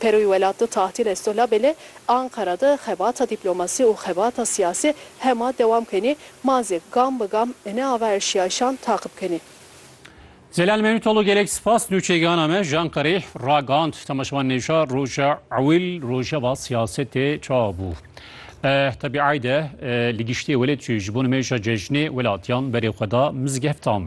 Peroyê welatê tahtê Lesto labelê Anqara de xebata dîplomasî û xebata siyasî hema dewam kenê, ma zî gam bi gam ne ava erşîyayîşan taqib kenê. Zelal Mevlûtoglu gelek spas nûçeyîgana me ji Anqareyê ragihand. Temaşevan nêja roja ewil rojeva siyasetê ça bû. Tebî eyde li giştê welêt jî ji bo nimêja cejnê welatîyan berê xwe da mizgeftan.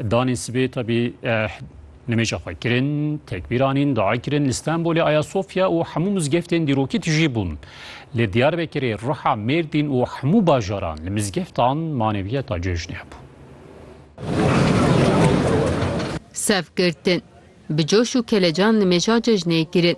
Danê sibê tebî Nimêja xwe kirin, tekbîr anîn, dua kirin, li Stenbolê, Ayasofya û hemû mizgeftên dîrokî tijî bûn. Li Diyarbekirê, Riha, Mêrdîn û hemû bajaran li mizgeftan maneviyeta cejnê hebû. Sevgirtin, bi coş û kelecan nimêja cejnê kirin.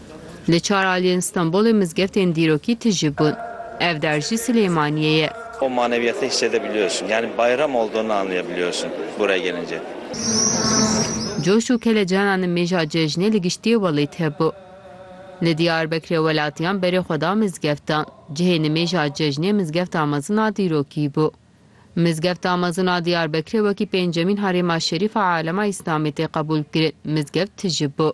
Li çar aliyên Stenbolê mizgeftên dîrokî tije bûn. Ev der jî Silêmaniyê ye. O maneviyatı hissedebiliyorsun. Yani bayram olduğunu anlayabiliyorsun buraya gelince. Coş û kelecan a nimêja cejnê li giştiyê welêt hebû. Li Diyarbekirê welatiyan berê xwe da mizgeftan. Cihê nimêja cejnê mizgefta mezin a dîrokî bû. Mizgefta mezin a Diyarbekirê wekî pêncemîn herêma şerîf a alema Îslamê tê qebûl kirin, mizgeft tije bû.